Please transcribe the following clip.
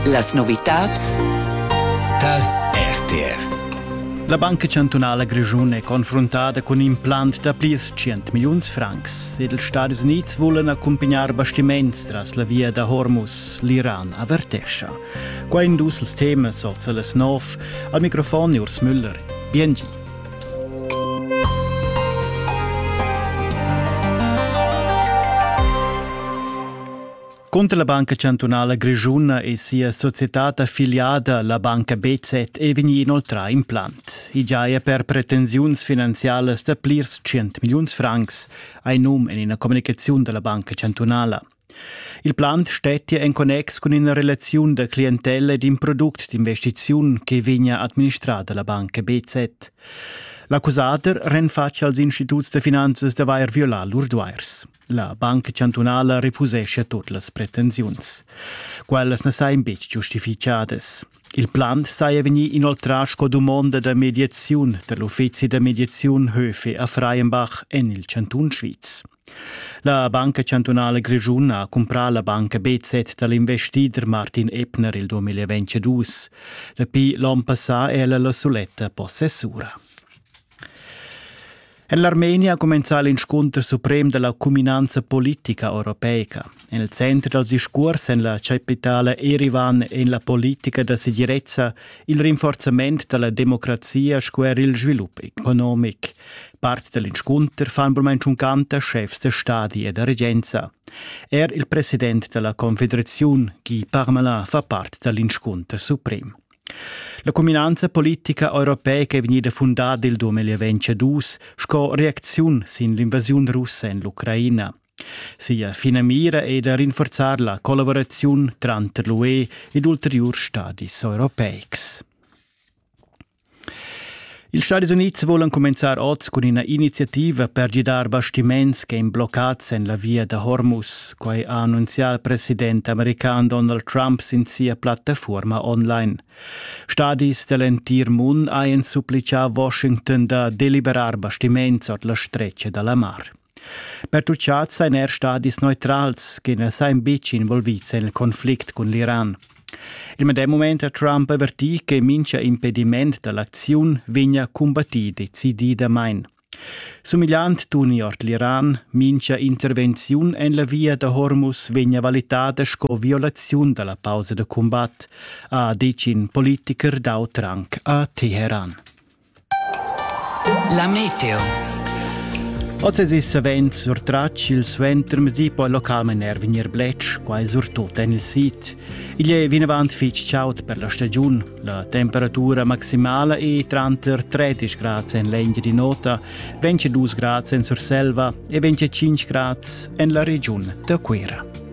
Las novitads tar RTR. La Banca chantunala grischuna è confruntada cun implant da plirs 100 milliuns francs. Ed ils Stadis Unids vulan accumpignar bastiments tras la via da Hormuz. L'Iran avertescha. Qua in dus els temas, olza las nov. Al microfon Urs Müller. Biengi. Cunter la Banca chantunala grischuna e sia societad affiliada, la banca BZ, è vegnì inoltrà implant. I giaja per pretensiuns finanzialas da plirs tschient milliuns francs, hai num en ina communicaziun da la Banca chantunala. Il plant stettia en connex cun ina relaziun da clientella ed in product d'investiziun che vegnia administrada la banca BZ. L'accusader renfatg als instituts da finanzas d'avair violà lur duairs. La Banca chantunala refusescha tut las pretensiuns. Quellas na sajan betg giustificadas. Il plan saja vegnì inoltrà sco dumonda da mediaziun da l'uffizi da mediaziun Höfe a Freienbach en il chantun Sviz. La Banca chantunala grischun ha cumprà la banca BZ dal investider Martin Ebner il 2022. Dapi l'onn passà è ella la suletta possessura. En l'Armenia ha cumenzà l'inscunter suprem da la cuminanza politica europeica. Nel centro dal discurs en la capitale Erivan en la politica da segirezza il rinforzament da la democrazia sco er il svilup economic. Part dell'inscunter fan bermain canta chefs de stadi e da regenza. Er il president della Confederazione, Guy Parmelin, fa part dall'inscunter suprem. La cuminanza politica europeica è vegnida fundada il 2022 sco reacziun sin l'invasiun russa en l'Ucraina. Sia finamira è da rinforzar la collaboraziun tranter l'UE ed ulteriurs stadis europeics. Ils Stadis Unids volan cumenzar oz cun ina iniziativa per gidar bastiments che ein bloccats en la via da Hormuz. Quai ha annunzià il president american Donald Trump sin sia plattafuorma online. Stadis dell'entir mund hajan supplicà Washington da deliberar bastiments ord la stretga dalla mar. Pertucciats ein er stadis neutrals che ne sein buc involvids en il Konflikt cun l'Iran. Il medem mument ha Trump avertì che mincha impediment da l'acziun vegna cumbattì decididamain. Sumigliant tuni ord l'Iran, mincha intervenziun en la via da Hormuz vegna valitada sco violaziun da la pausa da cumbat, ha decin politiker dau Trank a Teheran. La meteo. Oz es savens surtratg il suentermezdi po il local maner vegnir bletsch, quai surtut en il sid. Igl è vinavant fitg chaud per la stagiun. La temperatura maximala è tranter 30 grads en l'Engia di Nota, 22 grads en Surselva e 25 grads en la regiun da Cuira.